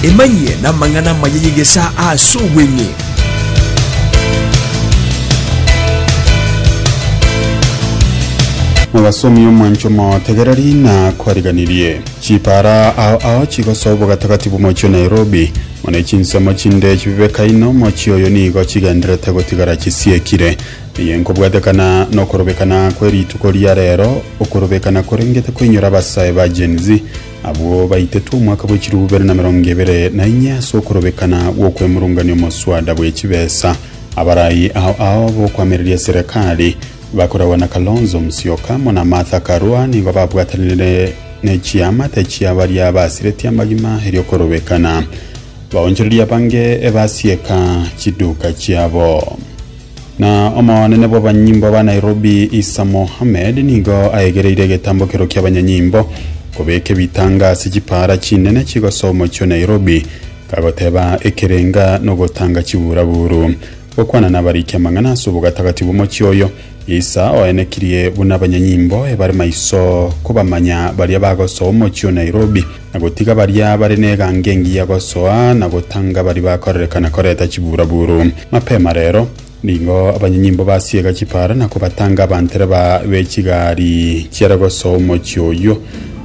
Emanyie namang'ana amaya y'egesaa ase obweng'e. Mogasomi omwancho motegereri na kwariganirie. Chipara ao ao chigosa obogatagati bw'omochie o Nairobi. Mone chinsemo chinde chibibeka inwe omochie oyo nigo chigenderete gotigara chisiekire. Eye nkobwatekana nokorobekana kwe rituko ria rero, okorobekana korengete koinyora abasae ba Gen-Z Abwo baitetwe omwaka bwe chilifu bibere na merongo ebere na inye ase okorobekana gw'okwemurungania omoswada bwe chibesa. Abarai ao ao b'okoamereria eserekari, bakoragwa na Kalonzo Musyoka, amo na Martha Karua, nigo babwatanire ne chiamate chia baria basiretie amagima eri'okorobekana baonchorerie abange ebasieka chiduka chiabo. Na omonene bw'abanyimbo ba Nairobi Isa Mohammed nigo aegereire egetambokero ki'abanyanyimbo kobeka ebitanga ase chipaara chinene chigosoa omochie o Nairobi kagoteba ekerenga nogotanga chiburaburu. Gokwana nabariki amang'ana ase obogatagati bw'omochie oyo, Isa oenekirie buna abanyanyimbo ebare maiso kobamanya baria bagosoa omochie o Nairobi. na gotiga baria bare n'egango engiya gosoa na gotanga baria bakorerekana koreta chiburaburu. Mapema rero, nigo abanyanyimbo basiega chipaara na kobatanga abantereba be chigari chiare gosoa omochie oyio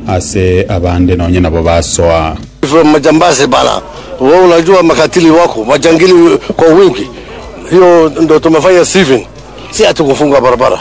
ase abande nonya nabo basoa. Ife majambazi bara, wewe unajua makatili wako majangili kwa wingi, hiyo ndio tumefanya Stephen, si ati kufunga barabara.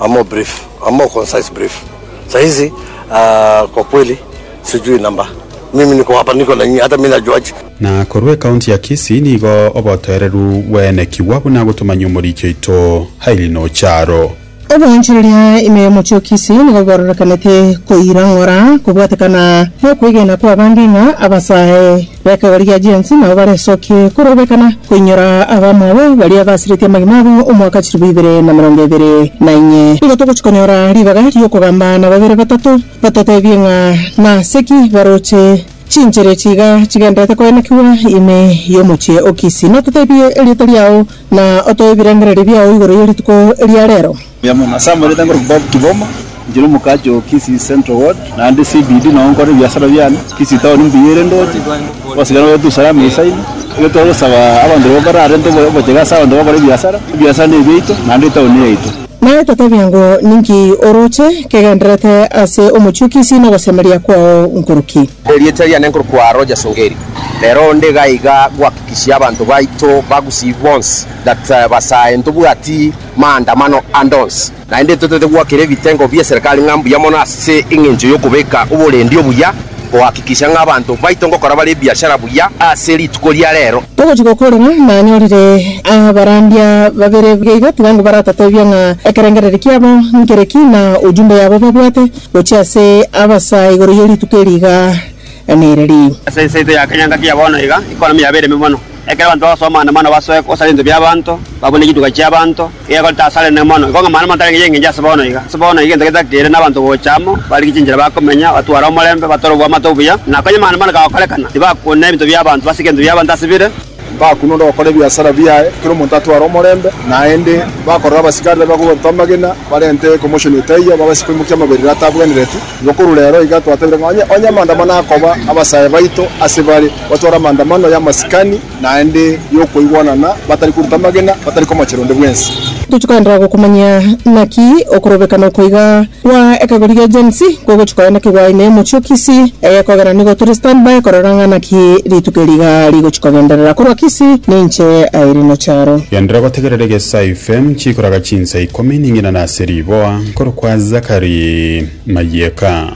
A more brief, a more concise brief, saa hizi aah, kwa kweli sijui number, mimi niko hapa, niko na nyinyi, hata mimi najuaje. Na korwa ekaunti ya Kisii nigo obotoereru bwaenekigwa buna gotomanyia omoriki oito Hailey Nocharo. Oboonchoreria ime y'omochie o Kisii nigo bwororekanete koirang'ora kobwatekana nokwegena kw'abande ng'a abasae. B'ekegori gia Jensi nabo baresokie korobekana koinyora abamwabo baria basiretie amagima abo omwaka chilifu ibere na emerongo ebere na inye. Nigo togochia konyora ribaga ri'okogamba na babere batato batotebie ng'a nase ki baroche chinchera echi iga chigendererete koenekigwa ime y'omochie o Kisi, nototebie erieta riao, na otoe ebirengererio biao igoro ye rituko eria reero. Mbuya mono. Ase amanyete ngorokia Bob Kiboma, inchera omokaache oo Kisii Central Ward, naende CBD nao nkore ebiasara biane. Kisii Town mbuya ere ndooche, osigare oete usalama esaino. Ekero twagosaba abanto barabwo bararente obo- obochege ase abanto bakore ebiasara, ebiasara nebiaito naende etown neyaito. Naye totebia ng'o, ninki orooche kegendererete ase omochie o Kisii na ogosemeria kwao nkoroki? Erieta riane nkorokwa Rogers Ongeri. Rero onde iga iga gohakikishia abanto baito ba Gusii bonsi that basae ntobwati. maandamano ande onsi. Naende totaete goakera ebitengo bi'eserekari ng'a mbuya mono ase engencho y'okobeka oborendi obuya, gohakikisha ng'a abanto baito ngokora bare ebiashara buya ase rituko ria reero. Togochia gokora ng'a nanyorire abarandia babere buya iga, tiga ngobaratotebia ng'a ekerengereri kiabo nkere ki, na ojumbe yabo babwate gochia ase abasaa igoro ye rituko eri iga nere ri. Ase ense yaito ya kenyangaki ya bono iga, ekonomi yabeire ime mono. Ekero abanto bagosoa amaandamano basoe gose ase ebinto bi'abanto, babune chituga chi'abanto, iga ekorete ase Arenene mono. Igo ng'amano mono tarenge y'engencho ase bono iga. Ase bono iga egento getakeire nabanto gocha amo, barigie chinchera bakomenya, batware omorembe, batore oboamate obuya, na konya amaandamano kagokorekana, tibakune ebinto bi'abanto, basike ebinto bi'abanto ase bire. Bakune onde ogokora ebiasara biaye, kera omonto atware omorembe, naende bakorora abasigari babe bakobaruta amagena, barente ekomoshoni etaiyo, babase koimokia amaberero atabwenereti. Igo korwa rero iga twatebirie ng'a onye amaandamano akoba, abasae baito ase bare. Batware amaandamano y'amasikani naende y'okoigwanana, batari koruta amagena, batari komochera onde bwensi. Tochikanda gokumanyia naki okorobeka nokoiga kwa ekegori gia Gen Z kogochi koya naki gwaine omochie o Kisii. Egekogera nigo tore stand by korora ng'a naki rituko eri iga rigochi kogenderera. Korwa Kisii, ninche Irino Charo. Genderera gotegerera egesayu FM chikoraga chinsa ikomi ning'ina na ase riboa, nkorokwa Zachary Mayeka.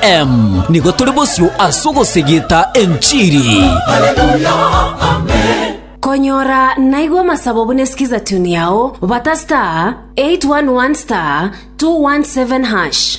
Em, nigo tore bosio ase ogosegeta enchiri. Konyora naigwa amasabo buna sikiza tune yao bata star 811 star 217 hash.